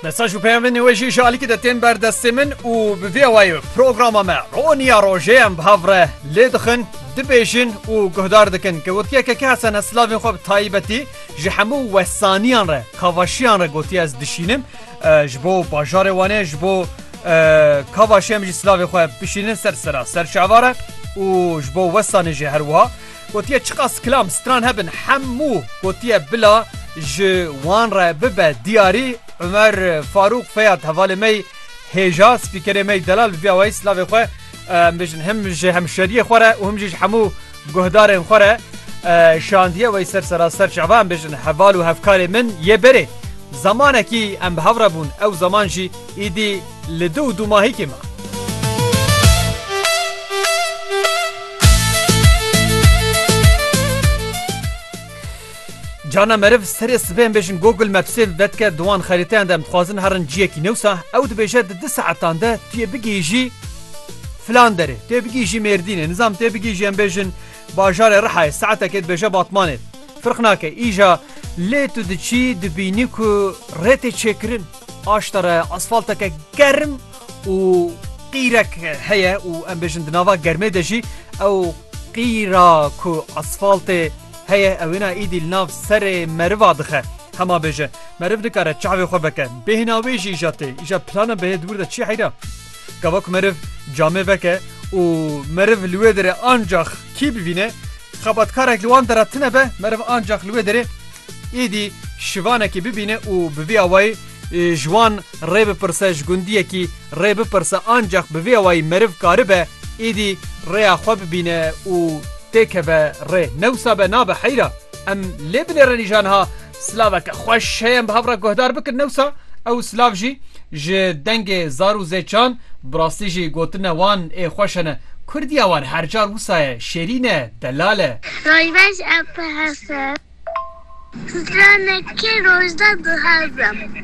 Mesaj û peyamên wê jî ji alîkî de tên ber destê min û bi vê wayê programa me roniya rojê em bi hev re lê dixin, dibêjin û guhdar dikin ke wekî yekeke Hesene silavên xwe bi tayîbetî ji hemû wesaniyan re, kavaşiyan re gotiye ez dişînim ji bo bajarê Wanê ji bo kavaşê em jî silavê xwe bişînin ser sera ser şeva re û ji bo wesanê jî her wiha. Gotiye çiqas kilam stran hebin hemû gotiye bila ji wan re bibe diyarî. Umer Farûq Feyad hevalê me yî hêja spîkerê me yî delal bi vîya wayî silavê xwe em bijin him ji hemşeriyê xwe re û him jî ji hemû guhdarên xwe re şandiye wayî ser seraser çava em bijin heval û hevkarê min yê berê. Zemanekî em bi hev re bûn ew zeman jî Îdî li du û dûmahîkê me. Carna meriv serê sibê em bêjin Google Mapsê bi vedike di wan xerîteyan de em dixwazin herin ciyekî ne wisa ew dibêje di du saetan de tu yê bigihîjî filan derê. Tu yê bigihîjî Mêrdînê, nizam tu yê bigihîjî em bêjin bajarê Rihayê saetekê dibêje Batmanê. Firq nake îja lê tu diçî dibînî ku rê tê çêkirin. Aşta re asfalteke germ û qîrek heye û em bêjin di nava germê de jî ew qîra ku asfaltê heye ew êna îdî li nav serê meriva dixe. Hema bêje meriv dikare çavê xwe veke bêhna wê jî îja tê îja plana bihê dibûr de çi heyra. Gava ku meriv camê veke û meriv li wê derê ancax kî bivîne xebatkarek li wan dera tine be meriv ancax li wê derê Êdî şivanekî bibîne û bi vî awayî ji wan rê bipirse, ji gundiyekî rê bipirse ancax bi vî awayî meriv karibe êdî rêya xwe bibîne û têkeve rê. Ne wisa be nabe heyra. Em lê binêre nîşan ha silaveke xweş heye em bi hev re guhdar bikin ne wisa ew silav jî ji dengê zar û zêçan bi rastî jî gotina wan ê xweş hene. Kurdiya wan her car wisa ye, şêrîn e. Delal e. Roj baş Epe Hesen. Stranek ke rojda duhezem.